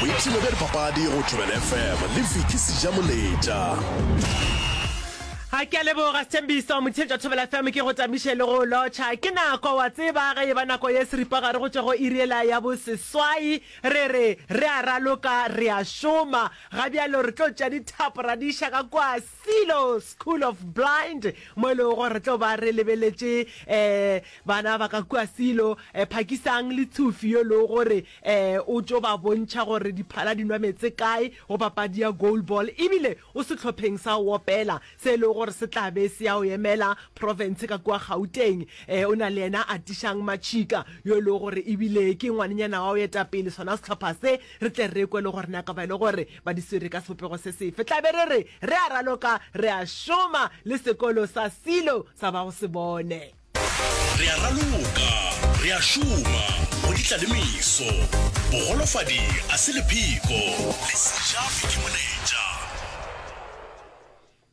boipshino bja dipapadi go tšhobela fm le viki sejamoletša ga ke a leboga sethembiso motsheng tša thobela fm ke go tamiše le go lotšha ke nako wa tseba ge e ba nako ye seripagare go tšwa go iriela ya boseswai re re re a raloka re a šoma ga bjalo re tlo tša dithapo ra di iša ka kwa Silo School of Blind mo e lego gore re tlo ba re lebeletše um bana ba ka kua Silo, um Phakisang le Tshufi yo e lego gore um o tšo ba bontšha gore diphala di nwa meetse kae go papadi ya goal ball ebile o sehlopheng sa go opela se e lego gore se tla be se ya go emela profense ka kua Gauteng. Um o na le yena Atishang Machika yo e lego gore ebile ke ngwanenyana wa go eta pele sona sehlopha se, re tle re kwe le gore na ka ba e le gore ba di swere ka sebopego se sefe, tla be re re re a raloka re a šoma le sekolo sa Silo sa ba go se bone. Re a raloka re a šoma go di tla le meso. Bogolofadi a se lepheko, lesija ke moletša.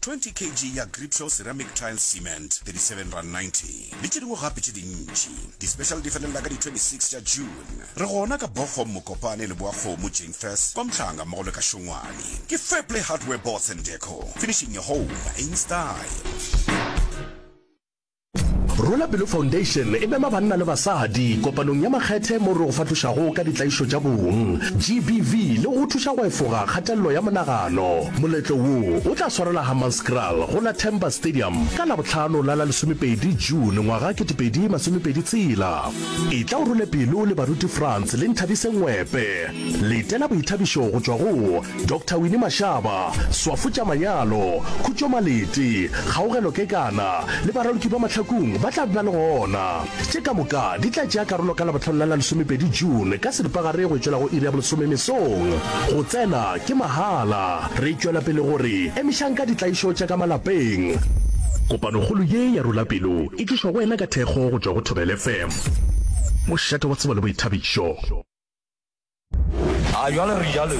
20 kg ya Gripsol Ceramic Tile Cement, 37 rand 90, le tše dingwe gape tše dintši. Di-special di felelela ka di 26 tša June. Re gona ka Bochum, Mokopane, Leboakgomo, Jeinfas, kwa Mhlanga mmogo le ka Šongwane. Ke Fairplay Hardware Boards and Deco, finishing your home in style. Rwela Pelo Foundation e mema banna le basadi kopanong ya makgethe moo re go fatošago ka ditlaišo tša bong, GBV, le go go thuša go efoga kgatelelo ya monagano. Moletlo wo o tla swarela Hammanskraal go la Temba Stadium ka Labohlano la la lesomepedi June ngwaga 2026. Etla o rwele pelo le baruti Frans le Nthabise Ngwepe. Letela boithabišo go tšwa go. Doctor Winnie Mashaba, Swafo tša Manyalo, Khutšo Malete, Kgaogelo Kekana le Baraloki ba Mahlakung ba tla bna le gona. Tše ka moka di tla tšea karolo ka Labohlano la la lesomepedi June ka seripagare go tšwela go iri ya bolesome mesong. Go tsena ke mahala. Re tšwela pele go re emišang ka ditlaišo tša ka malapeng. Kopanokgolo ye ya Rula Pelo e tlišwa go wena ka thekgo go tšwa go Thobela FM, mošate wa tsebo le boithabišo. a jwale re jalotu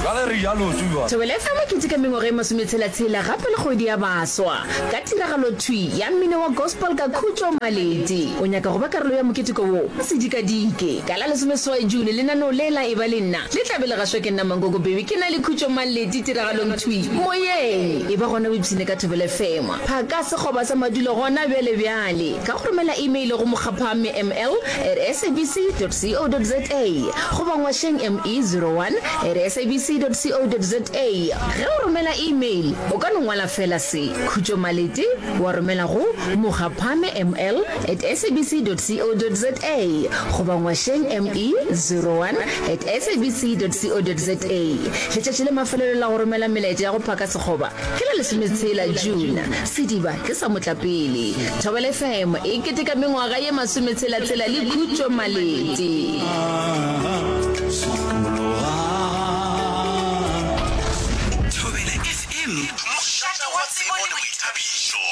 jwale re jalotu jwa Thobela FM e keteka mengwaga e masometshela-tshela gape le kgwedi ya baswa ka tiragalothwi ya mmino wa gospel ka Khutšo Maleti. O nyaka go ba karolo ya moketeko wo? O se dikadike! Ka la lesomeseswai June lenaneo le la Eba le Nna le tla be le gašwa ke nna Mankoko Bebe ke na le Khutšo Maleti tiragalongthwi moyeng. Eba gona o ipshine ka Thobela FM, phaka sekgoba sa madulo gona bjalebjale ka go romela email go mokgapha mme ml at sabc.co.za goba ngwašeng ME 01 at sabc.co.za. Ge o romela email, o ka no ngwala feela se, Khutšo Malete, wa romela go Mokgaphame ML at sabc.co.za goba ngwašeng ME 01 at sabc.co.za. Letšatši la mafelelo la go romela melaetša ya go phaka sekgoba Ke la lesometshela June, sediba ke sa motlapele. Thobela FM e keteka mengwaga ye masometshela-tshela le Khutšo Malete. Thobela FM, mošate wa tsebo le boithabišo.